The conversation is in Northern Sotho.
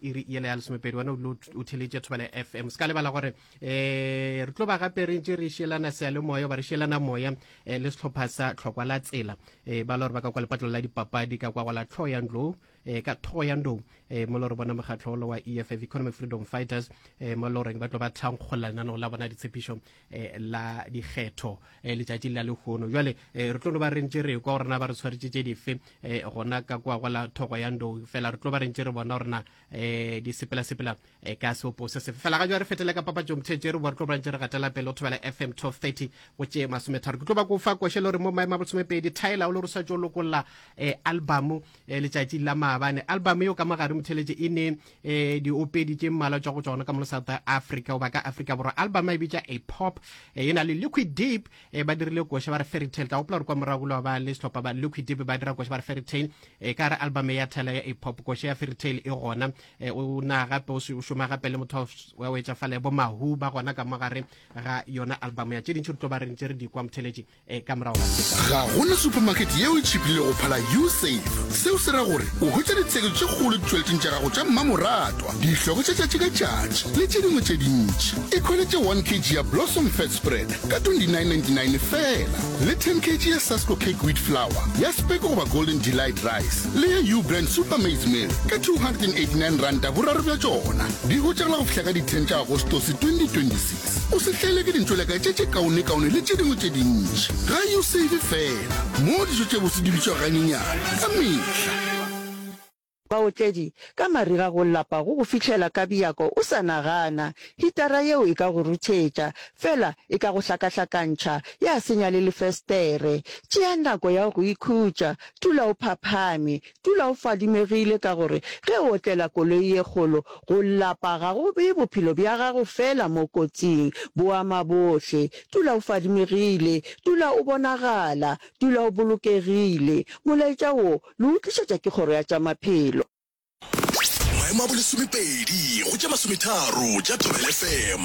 iri yela ya lesomepedi wena o o theletše thobela fm se ka lebala gore um re tlo ba gape re ntse re šelana sealemoya ba re šelana moya um le setlhopha sa tlhokwa la tsela um ba le gore ba ka kwa lepatlo la dipapadi ka kwa go la tlhogo ya ndlou um ka thogo ya ndou um mo le gore bona mokgatlho olo wa eff economic freedom fighters um mo le goreng ba tlo ba thankgolla lenaneo la bona ditshepišo eh, la dikgetho eh, letšatšing la lehono jale eh, re tlo no ba rentše re kwa gorena ba re tshwaretše tše dife eh, gona ka kwa kwa la thogo ya ndo fela re tlo ba rentše re bona gorena eh, di sepela-sepela eh, ka seopo se sefe fela ga jwa re fetele ka papatšo mothetše re bo re tlo ba rentše re gatela pele o thobela fm 1230 go tše masometharo ke tlo ba ko fa košele gore mo maemo a bolesomepedi thaela o le re sa tšo lokolola eh, albumo eh, letšatšing la maabane albumo eo ka mogare motheletše e ne eh diopedi tše mmala tšwa go tsona ka mo south africa goba ka africa borwa album e bitša a pop eh, e na le liquid deep eh, ba dirile koša ba re fairy tale ka gopola gore kwa morago lo ba le sehlopha ba liquid deep ba dira koša ba re fairy tale eh, ka re album ya thela ya a pop koša ya fairy tale e gona o na gape o šoma gape le motho wa o etša fale bo mahu ba gona ka mo gare ga yona album ya tše dintši re tlo ba re ntse re di kwa motheletše e ka morago ga go na supermarket yeo e tšhipile go phala usafe seo se ra gore o hwetša ditsheketo tše kgolo ditšweletšeng tša gago tša mmamoratwa dihloko tša tšatši ka tšatši le tše dingwe tše dintši e khweletše 1 kg ya blossom fat spread ka 2999 fela le 10 kg ya sasco cake wheat flower ya speko goba golden delight rice le ya u brand super maize mill ka 289 ranta boraro bja tšona di hwetšagala go fihla ka di-10 tša agostose 2026 o se tlele ke dintšoleka tše tše kaonekaone le tše dingwe tše dintši ga usave fela mo dijo tše bose di bitšwa ganyenyane ka mehla Baotledi, Ka mariga go lapa go go fihlela ka bjako o sa nagana. Hitara yeo e ka go ruthetša. Fela, e ka go hlakahlakantšha, ya senya le lefestere. Tšea nako ya go ikhutša. Dula o phaphame. Dula o fadimegile ka gore ge o otlela koloi ye kgolo, go lapa ga go bee bophelo bja gago feela mo kotsing, bo ama bohle. Dula o fadimegile. Dula o bonagala. Dula o bolokegile. Molaetša wo le o tlišetša ke Kgoro ya tša Maphelo. Maemo a bolesomepedi go tše masometharo tša Thobela FM.